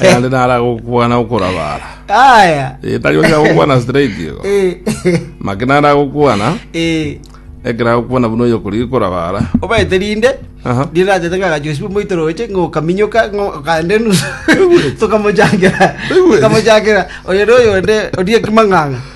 ayande nara gokwana okorabara Aya. Eh, tari onya gokwana straight igo Eh. make nara gokwana Eh. ekero agokwana buna oyo kori korabara obaete rinde Aha. rinde achete ngagachusibwe moito roche ngokaminyoka ngokande nusu tokamochakera Oigwete? tokamochakera oyo noyo onde orie kimang'ang'a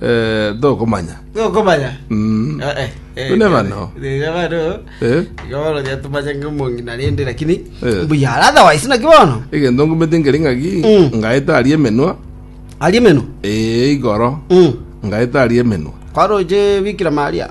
Eh, tokomanya. Tokomanya. Mm. Eh, eh, eh, Tune bano. Rega bano. Eh? Iga bono ria tumache ng'omong'ina rende lakini Eh. mbuya ara otherwise naki bono Egento ngumete nkere ng'aki, Mm. ngaeta aria emenwa, arie meno eh, igoro, Mm. ngaeta aria emenwa. kwaroche bikira maria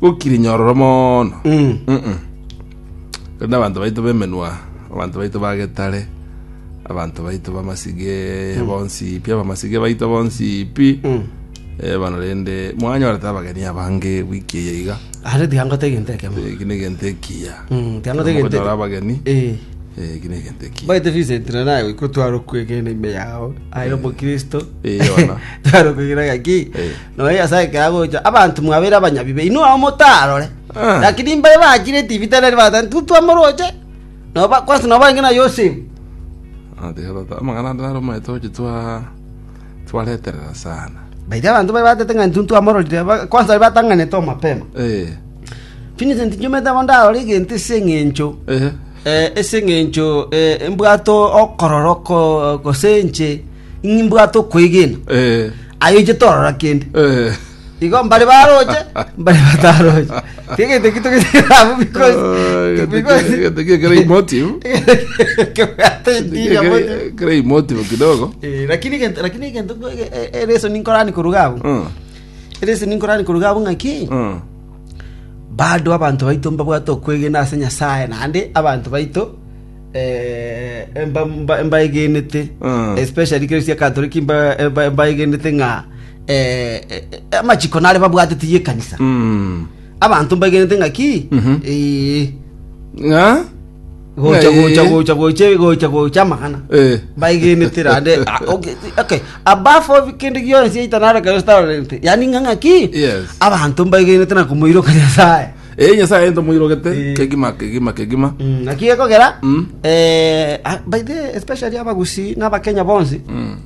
gokire nyororo mono Mm. Mm-mm. rende abanto baito bemenwa abanto baito bagetare abanto baito bamasige bonsi pi abamasige baito bonsi pi Mm. Eh, bono rende mwanyora ta abageni abange wiki eye iga Are tiangote egento ekemo. Eh, eki negento ekiya Mm, tiangote egento Mokonyora ekemo. abageni Eh. Eh, eki negento ekiya Baite Vincent na naye ikotwara okwegena ime yao. Aye omokristo. Eh, ona. Twara okwegena gaki. Eh. Nonya Nyasae ekero agocha abanto mwabeire abanyabibe, inwe ao motarore. Lakini mbare bachire etibita eria ribagoeta, Intwe twamoroche, na oba- kwanse na obaange na Yosefu. Nateba tata, amang'ana ande naro omanyete gochi twa twareterera sana. Baria abanto bare batete ng'a intwe ntwamororire, ba- kwanse baria batang'anete oo mapema. Eh. Vincent nchiomete amo ndarore egento ase eng'encho Eh. eh, ase eng'encho eh, mbwate okororo ko- gose inche ng'ai mbwate okwegena, Eh. aye oiche torora kende. Eh. Igo mbare baroche, mbare bataroche. Tegete kito giterabu because Ay, because gete- gete kera emotive. kebwate intiria moja. Kera- kera emotive kidogo Eh, lakini gento lakini gento ereso ninkorani koruga abu. Mm, Ereso ninkorani koruga abu ng'aki. mm. bado abanto baito mbabwate okwegena ase nyasaye naende abanto baito Eh, mba- mba- mbaegenete Mm. especially kero sia katoliki mba- mba- mbaegenete ng'a eh, eh, eh, amachiko nare babwatete ye ekanisa Mm. abanto mbaegenete ng'a ki Mhm. Eh, Ng'a? gocha Eh. gocha gocha gocha gocha gocha amagana Eh. mbaegenete rande ah, okay, okay above all kende gionsi yaita nare kayo starent yani ng'a ng'a ki Yes. abanto mbaegenete na komoiroka nyasaye Ee, Nyasaye aye ntomoirogete Eh. kegima kegima kegima. Mm, naki gekogera Mm. eh, ah, by the way, especially abagusi n'abakenya bonsi Mm.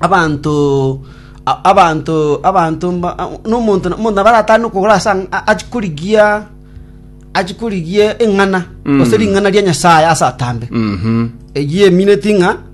abanto a- abanto abanto mba- a- n'omonto na- omonto nabaratane okogora ase ang- a- achikorigia achikorigia eng'ana Mm. gose ring'ana ria nyasaye ase atambe Mhm. eyiemineti ng'a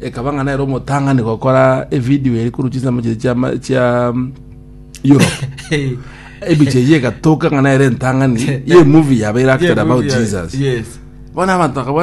ekaba ng'a nere omotang'ani gokora evidio eri korwa chinsemo chiria chiama- chia mm, europe ebicha eyio egatoka ng'a nere entang'ani ye movie yabeire acted about jesus Yes. bono abanto bakabwata